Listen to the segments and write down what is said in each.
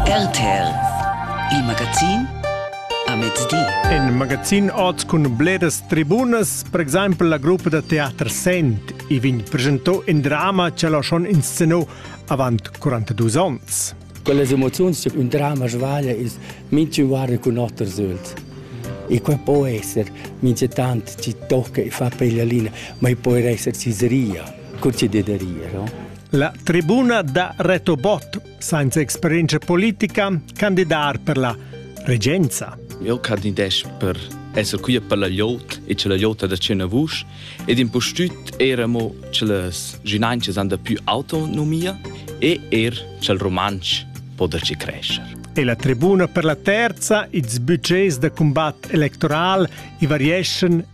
RTL Il magazin a mezdi. In magazin oz cun bleras tribunas, per exempel la gruppa da teater Sent, i vegn presentò in drama che l'ha schon inscenò avant 42 onns. Con las emozioni tipo un drama svaglia ist minchun guarda con otter sylt. E quel può essere, mince tant ci tocca e fa per la linea, ma può essere ciseria, con ci dederia, no? La tribuna da Reto Bott, sainza experienza politica, candidar per la regenza. Eu candidesch per esser qui per la llot e che la llota da cena vusch ed impustüt era mo che las ginanches han da più autonomia e er che il romansch po da ci crescer. E la tribuna per la terza, ils budgets da combat electoral i varieschan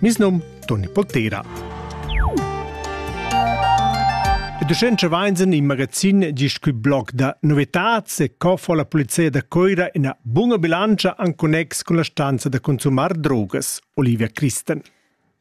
Mis num Toni Poltera. E ducente vainsen in magazin di scu blog da novetats e co fa la polizia da Coira ina bunga bilancia an connex con la stanza da consumar drogas, Olivia Christen.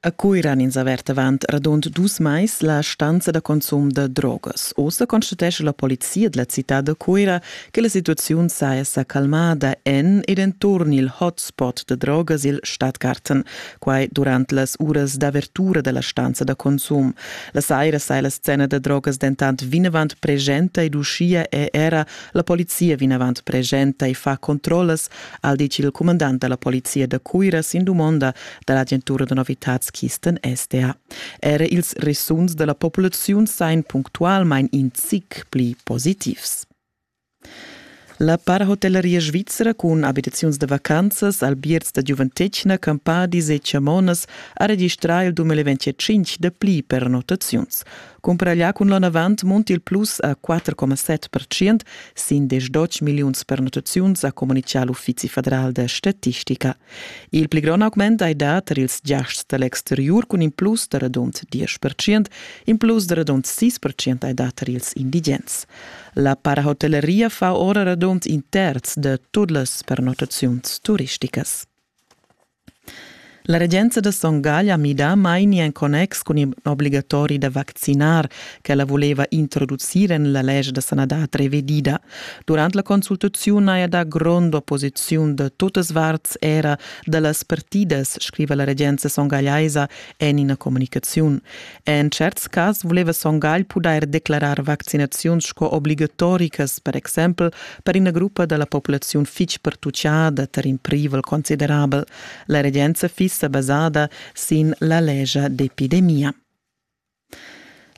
A Coiran ins avert avant radund dus mais la stanza da consum da drogas. Ossa constatesce la polizia della città da Coira che la situaziun saja sa calmada en ed enturn il hotspot da drogas il Stadtgarten, quai durant las uras d'avertura da la stanza da consum. La saira sai la scena da drogas dentant vinavant presenta ed uschia è era la polizia vinavant presenta e fa controllas, al dice il comandant da la polizia da Cuira sin dumonda da l'agentura da novitads Kisten SDA. Era ils resuns da la populaziun sain punctualmain in zic pli positivs. La parhotelleria svizra cun abitaziuns da vacanzas, albierts da giuventetgna, campadis e chamonas ha registrà il 2025 dapli pernottaziuns. Cumparà cun l'onn avant munti il plus a 4,7% sin 10 milliuns pernottaziuns, ha communitgà l'Uffizi federal da statistica. Il pli grond augment hai dà tar ils giasts da l'exteriur cun in plus da radund 10%, in plus da radund 6% hai dà tar ils indigens. La parahotelleria fa ora radund in terz de tut las pernottaziuns turisticas. La regenza de Son Gagl ha mida maini en connex cun in obbligatori da vaccinar che la voleva introducir en la legge de sanadad revedida. Durante la consultazione haja da grond opposiziun de tutas varts era de las partidas, scriva la regenza songagliaisa en ina comunicaziun. En tscherts cas vuleva Son Gagl pudair declarar vaccinaziuns sco obligatoricas, per exempel per ina gruppa da la populaziun fitg pertutgada tar in privel considerabel. La regenza fiss sa basada sin la lescha d'epidemia.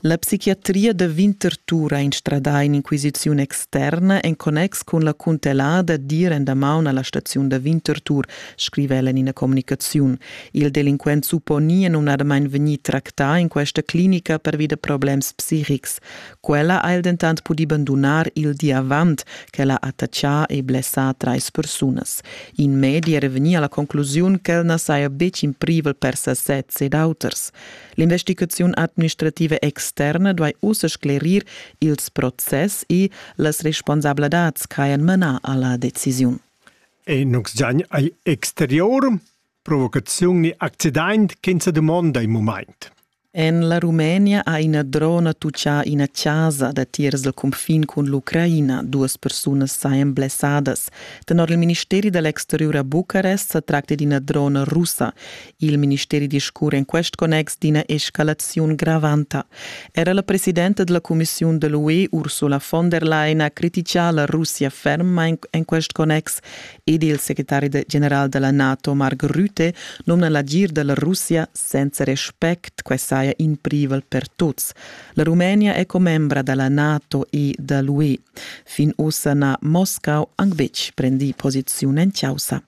La psichiatria da Winterthur ha instradà in'inquisiziun externa en connex cun la cuntellada d'ir en damaun a la staziun da Winterthur. scriva el en ina communicaziun. Il delinquent supponi è numnadamain vegnì tractà in questa clinica pervi da problems psichics. Quella ha el dentant pudì bandunar il di avant ch'el ha attaccà e blessà trais persunas. In medi era vegnì a la conclusiun ch'el na saja betg in privel per sasez ed auters. L'investigaziun administrativa externa duai ussa sclerir ils process e las responsabladats ch'hajan manà a la decisiun. ei nus giagn agl exterior, provocaziun ni accident ch'ins dumonda in mumaint. En la Rumenia ha ina drona tuccà ina chasa datiers dal cunfin cun l'Ucraina. Duas persunas sajan blessadas. Tenor il ministeri da l'exteriur a Bucarest sa tracti d'ina drona russa. Il ministeri discurra en quest connex d'ina escalaziun gravanta. Era la presidenta della Commissiun de l'UE Ursula von der Leyen ha criticà la Russia fermmain en quest connex ed il secretari general della NATO Mark Rutte nomna l'agir della Russia senza respect che saja in privel per tuts. La Rumenia è commembra della NATO e da l'UE. Fin ussa n'ha Moscau anc betg prendì posiziun en causa.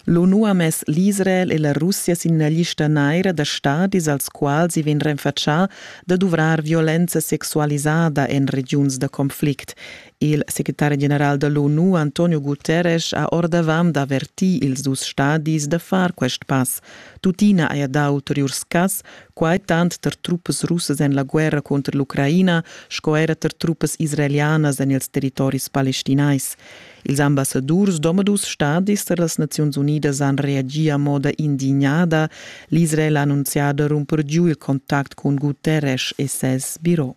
L'ONU ha mess l'Israel e la Russia sin la lista naira da stadis als quals i vegn renfatschà da duvrar violenza sexualisada en regiuns da conflict. Il secretari general da l'ONU Antonio Guterres ha ordavant avertì ils dus stadis da far quest pass. Tuttina haja dà ulteriurs cass, quai tant tar truppas russas en la guerra cunter l'Ucraina sco era tar truppas israelianas en ils territoris palestinais. Ils ambassadurs d'omadus stadis da las Naziuns Unidas han reagì a moda indignada. L'Israel ha annunzià da rumper giu il contact cun Guterres e ses biro.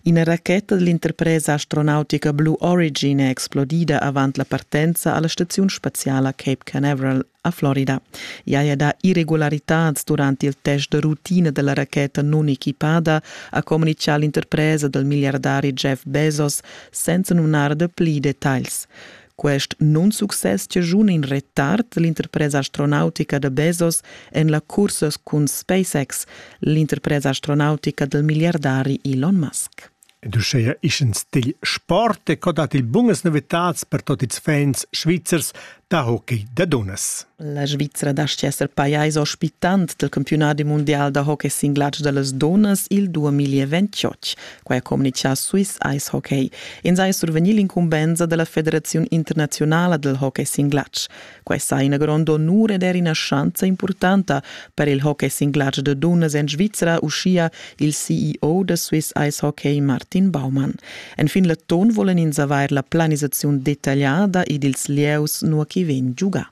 Ina racheta dell'interpresa astronautica Blue Origin è explodida avant la partenza a la staziun spaziala Cape Canaveral a Florida. I haja dà irregularitads durant il test da rutina da la racheta nunequipada, ha communitgà l'interpresa dal miliardari Jeff Bezos senza numnar da pli detagls. Quest nunsuccess chaschuna in retard l'interpresa astronautica da Bezos en la cursa cun SpaceX, l'interpresa astronautica dal miliardari Elon Musk. Ed uscheia ischens digl sport e co dat il bungas novitads per tot ils fans svizzers da hockey da dunnas. La Svizra dastgia esser pajais ospitant del campiunadi mundial da hockey singlatsch da las dunnas il 2028. Quai ha communichà Swiss Ice Hockey. Ins haja survegnì l'incumbensa da la Federaziun internaziunala del hockey singlatsch. Questa è ina grond onur ed er ina schanza impurtanta per il hockey singlatg da dunnas en Svizra, uschia il CEO da Swiss Ice Hockey Martin Baumann. Enfin l'atton volen ins avair la planisaziun detagliada ed ils lieus nua che vegn giugà.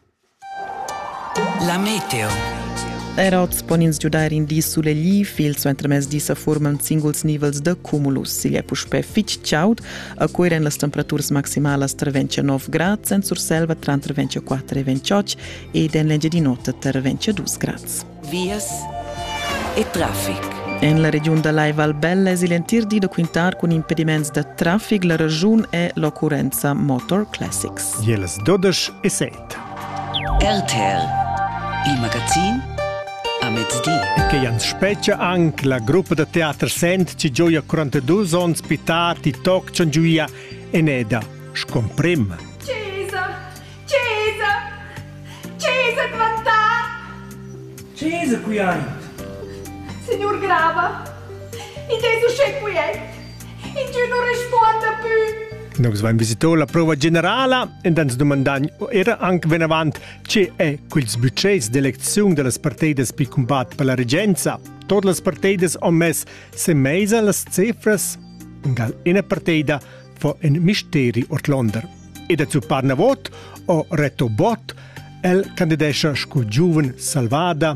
La meteo. Er oz pon ins giudair in di sulegliv. Il suentermezdi sa furman singuls nivels da cumulus. Igl è puspè fitg chaud. A Cuira en las temperaturas maximalas tra 29 grads, en Surselva tra 24 e 28 ed en l'Engiadin'Ota tra 22 grads. Vias e traffic. En la regiun da Lai Val Bella es il entir di da quintar cun impediments da traffic. La ragiun è l'occurrenza Motor Classics. Jelas 12 e 6. RTL Il magazin a mezdi. Che ans spetgia anche la gruppa da teater Sent ci gioia 42 onns pitar ti toc giuia Eneda, scomprem. Cesa, Cesa, Cesa quantà! Cesa qui aint! Signor Grava, id es uschè quiet, Ingün nu respuonda pü. Nus vain visito la prova generala ed ans dumandain era anc venavant che è quels budgets d'elecziun da las partidas per combat per la regenza. Tot las partidas han mess se mesa las cifras. Gal ina partida fa in misteri ortlonder. E da zuppar na vot o reto bot, el candidescha sco giuven salvada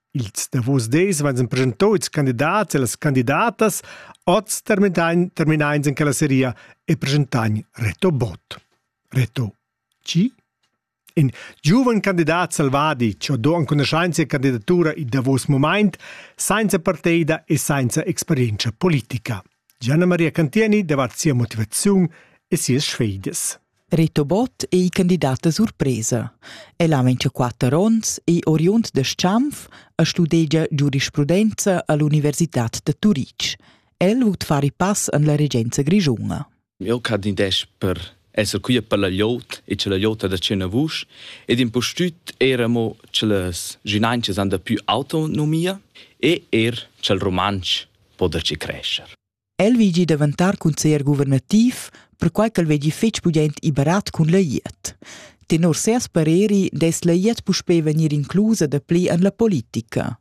Ils davos dis van preschentads candidats e las candidatas oz terminain en quella seria e preschentain Reto Bott. Reto, chi? In giuven candidat selvadi che do enconuscenza e candidatura il davos moment, senza partida e senza experienza politica. Gianna Maria Cantieni davat sia motivaziun e sias sfeidas. Reto Bott ei candidata surpresa. El ha 24 onns, ei oriund da Schanf e studegia giurisprudenza all'Universitad da Turitg. El vut far i pass en la regenza grischuna. Eu candidesc per esser quia per la liot e cha la liota da tschena vusch ed impustüt eir amo cha las ginanchas han da pü autonomia e eir cha'l rumantsch po der chi crescer. El vegi daventar consiglier guvernativ, perquai ch'el vegi fetg pudent e barat cun la IET. Tenor ses pareri dess la IET puspè vegnir inclusa da pli en la politica.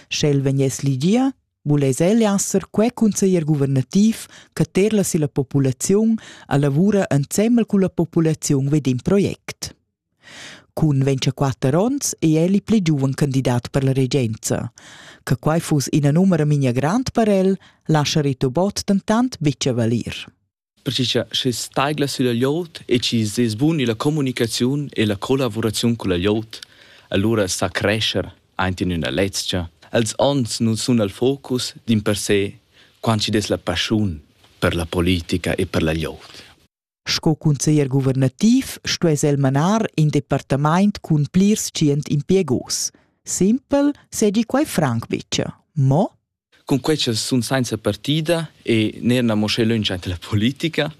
Sch'el vegness ligia, vuless el esser quei conseglier guvernativ che terla silla populaziun a lavura ensemmel culla populaziun vid in project. Cun 24 onns è el il pli giuven candidat per la regenza. Che quai fuss ina numera migna grand per el, lascia Rito Bott dentant bice valir. Perche sche staigla sülla glieud e chi sez bun illa comunicaziun e la collavuraziun culla glieud, allura sa crescher aint in üna lezcha. Els ons nun sun al focus dimpersè quant chi'd es la paschiun per la politica e per la glieud. Sco cunseglier guvernativ stuess el manar in departamaint cun plirs tschient impiegos. Simpel segi quai franc bicha, mo Cun quella sun sainza partida e neir na mo sche löncha ante la politica,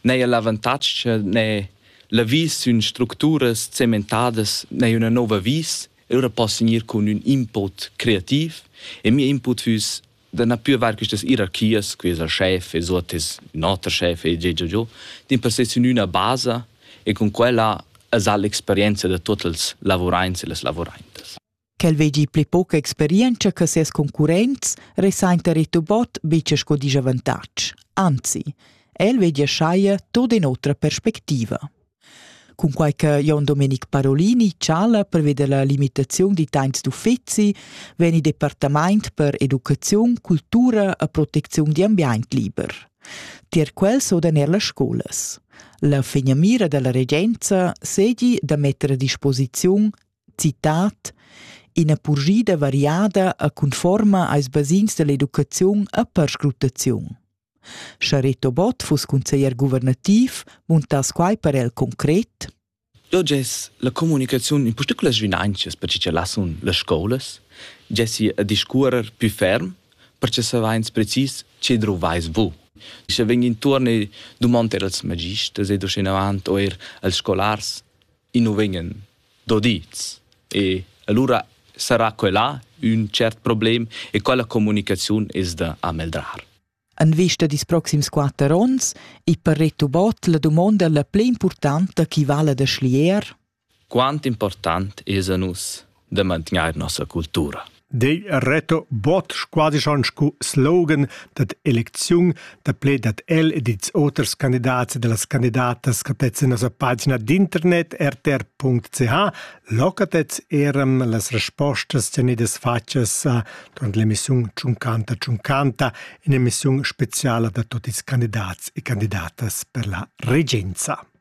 neir l'avantatg ne la vis sün structuras zementadas neir üna nouva vis, ora poss gnir cun ün input creativ e mia input füss da na pür var quistas ierarchias, qui es el schef e suot es ün oter schef e già già già, dimpersè sün üna basa e cun quella es ha l'experienza da tuot els lavuraints e las lavuraintas. Quel vegli pli poca experientscha che ses concurrents resainta Ritobot bice sco disavantatg. Anzi, el veglia schaia tot in otra perspectiva. Cunquai che Jon Domenic Parolini chala per veder la limitaziun di tains d'uffizi, vegn il departament per educaziun, cultura e proteziun di ambient liber. Tier quel sodan er las scolas. La fegnamira della regenza sedi da metter a disposiziun Citat Ina purschida variada e conforma als basegns dall'educaziun e perscrutaziun. Sche Reto Bott fuss consiglier guvernativ, muntass quai per el concret? Dò gess la comunicaziun in particulas vinanzas per che lassun las scolas, gessi a discuorer più ferm, perché savains precis che druvais vu. Sche vegn intuorn e dumond er als magisters ed uschenavant eir als scolars i nu vegnan dodids. E allura sarà quella ün tschert problem e quella comunicaziun es da ameldrar. En vista dis proxims quatter onns è per Reto Bott la dumonda la pli importanta chi vala da schlier? Quant important es a nus da mantgnair nossa cultura. Dei reto bot quasi schon scu slogan dad elecziun da ple dad el e dits oters candidats e delas candidatas catets in nossa pagina d'internet rtr.ch locatets eram las respostas tenidas fatgas a durant l'emissiun Ciuncanta Ciuncanta in emissiun speciala da tutti ils candidats e candidatas per la regenza.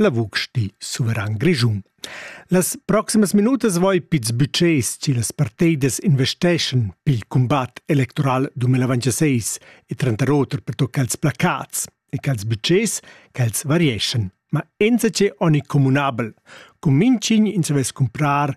La vusch di suveran grischun. Las proximas minutas voi pits bütschés chi las parteidas investeschan pel cumbat electoral 2026 e tranter oter per tocca els placats e cha'ls bütschés ch'els varieschan, ma enzache ogni communabel. Cuminching in savess cumprar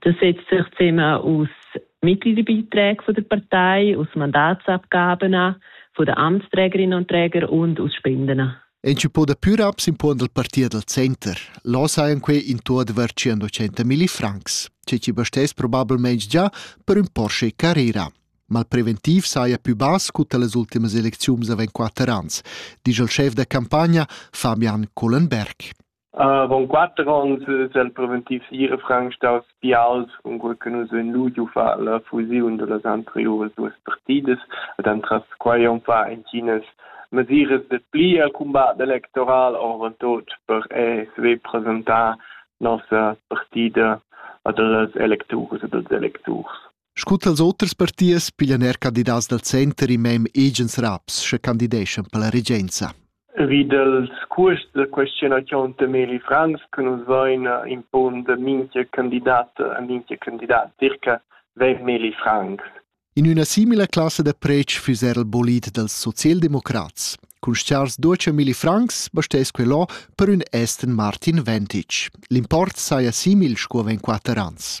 Das setzt sich zusammen aus Mittelbeiträgen von der Partei, aus Mandatsabgaben von den Amtsträgerinnen und Trägern und aus Spenden. En ci po da pür abs in puon dal partia dal center. Là sajan quei in to adver 100 milli francs, ce ci bestess probabilmente già per un Porsche Carrera. Ma il preventiv saja più bass cu las ultimas elecziuns avent quatter ans, dice il chef da campagna Fabian Collenberg. Avon quater onns es el preventiv ira franc staus bials, cunquei che nus vein ludiu far la fusiun dallas anteriuras duas partidas ed entras quei on fa entginas mesiras de pli al cumbat electoral, orvantut per ESV presentar nossa partida ad las electuras ed als electurs. Sco tals oters partiers piglian er candidats dal center in mem agens raps, sche candideschan per la regenza. Vi dals cuosts da questionaziun Temeli Franz che nus vain impond minchia candidat a minchia candidat dir che vegn Meli Franz. In üna simila classa da preč füss er il bolid dals socialdemocrats. Cun stars duce Mili Franks bastess quello per ün esten Martin Ventic. L'import saja simil sco ven quatter ans.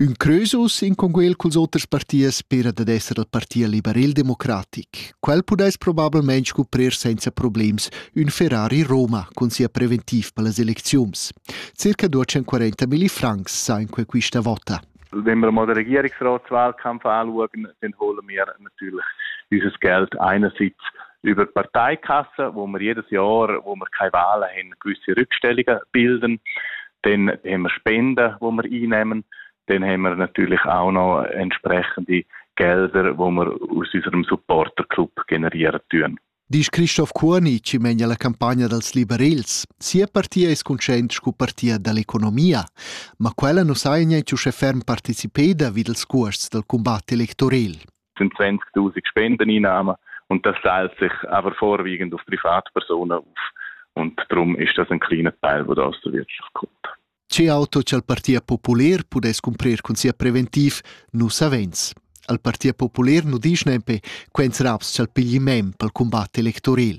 Ün creusus in conguel culs oters partiers spera dad esser il parti liberel-democratic. Quel pudais probablmaing scuprir senza problems ün Ferrari Roma cun sia preventiv per las elecziuns. Circa 240 milli francs sa in questa vota. Wenn wir mal den Regierungsratswahlkampf anschauen, dann holen wir natürlich unser Geld einerseits über die Parteikasse, wo wir jedes Jahr, wo wir keine Wahlen haben, gewisse Rückstellungen bilden. Dann haben wir Spenden, die wir einnehmen. Dann haben wir natürlich auch noch entsprechende Gelder, die wir aus unserem Supporterclub generieren tun. Disch Christoph Kurni, chi megna la campagna dals liberels, sia partia es conscient scu partia dall'economia, ma quella nu saja niente uschè ferm partecipeda vi dals cuosts dal cumbat electorel. sind 20.000 Spendeneinnahmen und das teilt sich aber vorwiegend auf Privatpersonen auf. Und darum ist das ein kleiner Teil, der da aus der Wirtschaft kommt. Ce auto che il Partito Popolare pudesse cumprir cun sia preventiv nu savens. Al Partito Popolare nu disch nempe quens raps ch'al pigli mem pel cumbat electoril.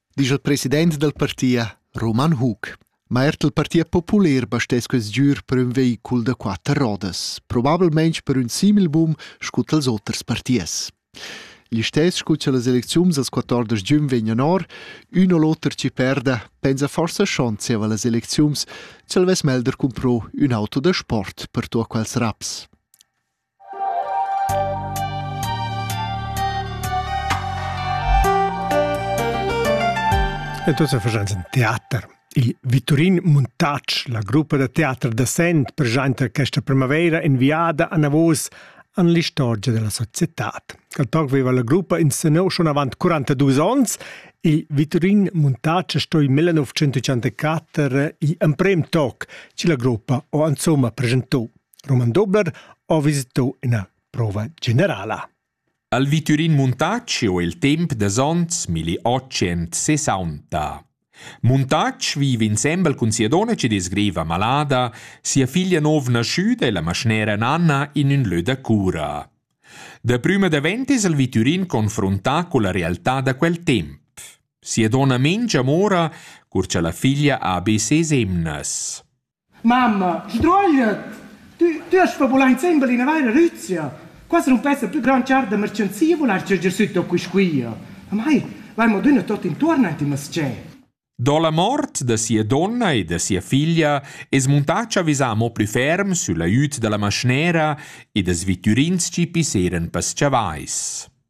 disch il president dal partia, Roman Hug. Ma er il Partia Populer bastess quest giur per un veicul da quatter rodas, probabilmente per un simil boom scu tals oters partiers. L'istess scu che las elecziuns als 14 giugn vegnan or, un o l'oter ci perda, pensa forsa schon zieva las elecziuns, c'el vess melder cumpro un auto da sport per tua quels raps. Et ussa faschans in teater. Il Viturin Muntatsch, la gruppa da teater da Sent, presenta questa primavera inviada anavos an l'istorgia della societad. Col toc veva la gruppa in senò schon avant 42 ons, il Viturin Muntatsch sto in 1984 i emprem toc, ci la gruppa o insomma presentò Roman Dobler ha visitò ina prova generala. Al Viturin Muntacci ho il temp da ons 1860. Muntacci vive insembel cun sia donna che disgreva malada, sia figlia nov nasciuda e la maschnera Nanna in ün lö da cura. Da prima davent es il Viturin confrontà con la realtà da quel temp. Sia donna Mengia mora cur cha la figlia ha be ses emnas. Mamma, sdruagliet! Tü, tü hast va vulan insembel ina vaira rüzia. Quasi nu pessa plü grand char da merchanzia vular chatger süt da quisquia. Amai, vai mo düna tot intuorn ant in mas-chè. Do la mort da sia donna e da sia figlia es muntà chavizà amo plü ferm süll aiüt da la maschnera ed as vittürins chi pisseran pas chavais.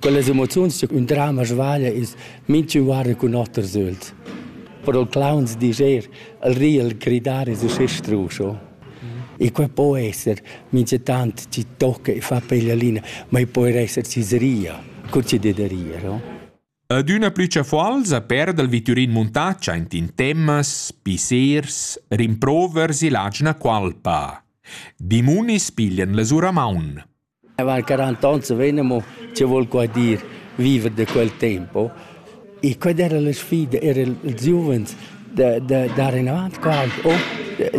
Quellas emoziuns cha ün drama svaglia es minchün guarda cun oter süld. Però clowns disch eir el ri, el gridar es uschè strusch o. E quai po esser minchatant chi tocca e fa peglialina, ma i po eir esser chi s'ria, cur chi det da rir o. Adüna plü chafuolza perda il vitürin Muntac aint in temas, pissers, rimprovers e lagina cualpa. Dimonis piglian la sura maun. El ha quaranta onns e vegn amo, chi voul qua dir, viver da quel tempo. E quella era la sfida, era ils giuvens da da dar inavant qua, o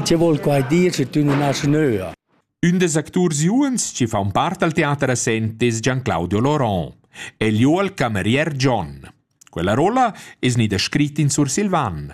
chi voul qua dir sche tü nun hast nöa. Ün des acturs giuvens chi fa un part al teater a Sent es Gian-Claudio Loron. El jo al camerier John. Quella rolla es gnida scrit in sursilvan.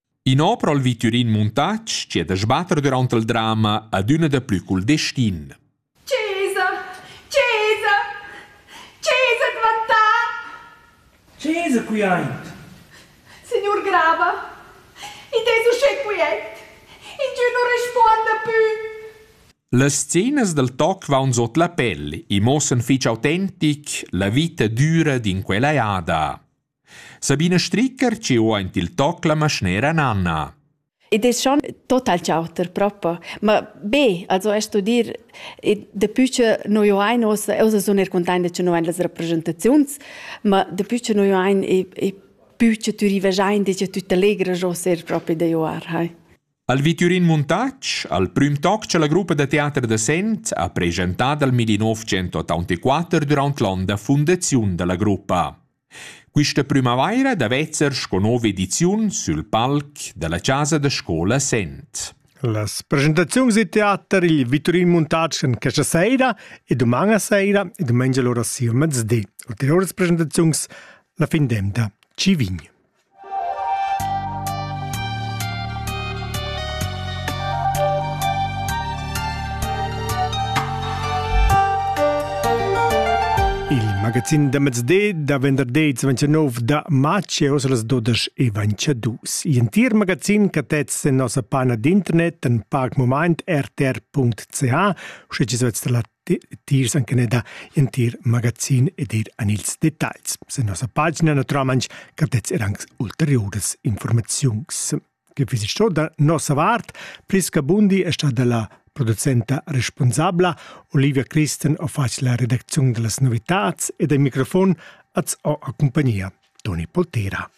In'opera al victurin Muntatsch chieda sbatter durant il drama adüna daplü cul destin. Cesa! Cesa! Cesa dvantà! Cesa qui aint! Signor Grava, id es uschè quiet. Ingio nu respuonda pü. Las scenas dal toc vaun sot la pel e muossan fich autentic la vita düra d'in quella jada. Sabina Stricker ci ho aint il toc la maschnera Nanna. Ed es schon total chauter propo. Ma be, also estu dir, dapü cha noi ho ain ossa, ossa sun eir cuntainta cha no hain las rapresentaziuns, ma dapü cha noi ho ain e pü cha tü rivagiain dicha tüt allegra jossa eir propi da joar, hai. Al Viturin Montac, al prüm toc cha la gruppa da teater da Sent ha pregentat al 1984 durant l'on da fundaziun da la gruppa. Quista prümavaira da vezzer sco nouva ediziun sül palc da la chasa da scoula Sent. Las presentaziuns da teater il Viturin Montatsch en questa saira e doman a saira e domengia l'ora sia mezzdi. Ulteriores presentaziuns la fin d'emda. Ci vign. magazin da mezde da venderday 29 da matg e os las 12 e 22. I'entir magazin che tez en nossa pana d'internet en pac moment rtr.ch, sche ci svet la tiers an Canada entir magazin ed ir an ils detagls. Sen nossa pagina naturalmente capdets er anche ulteriores informaziuns. Gevisistor da nossa vart, Priska Bundi è stata la producenta responsabla, Olivia Christen ha fatto la redazione delle novità e del microfono az ho a compagnia Toni Poltera.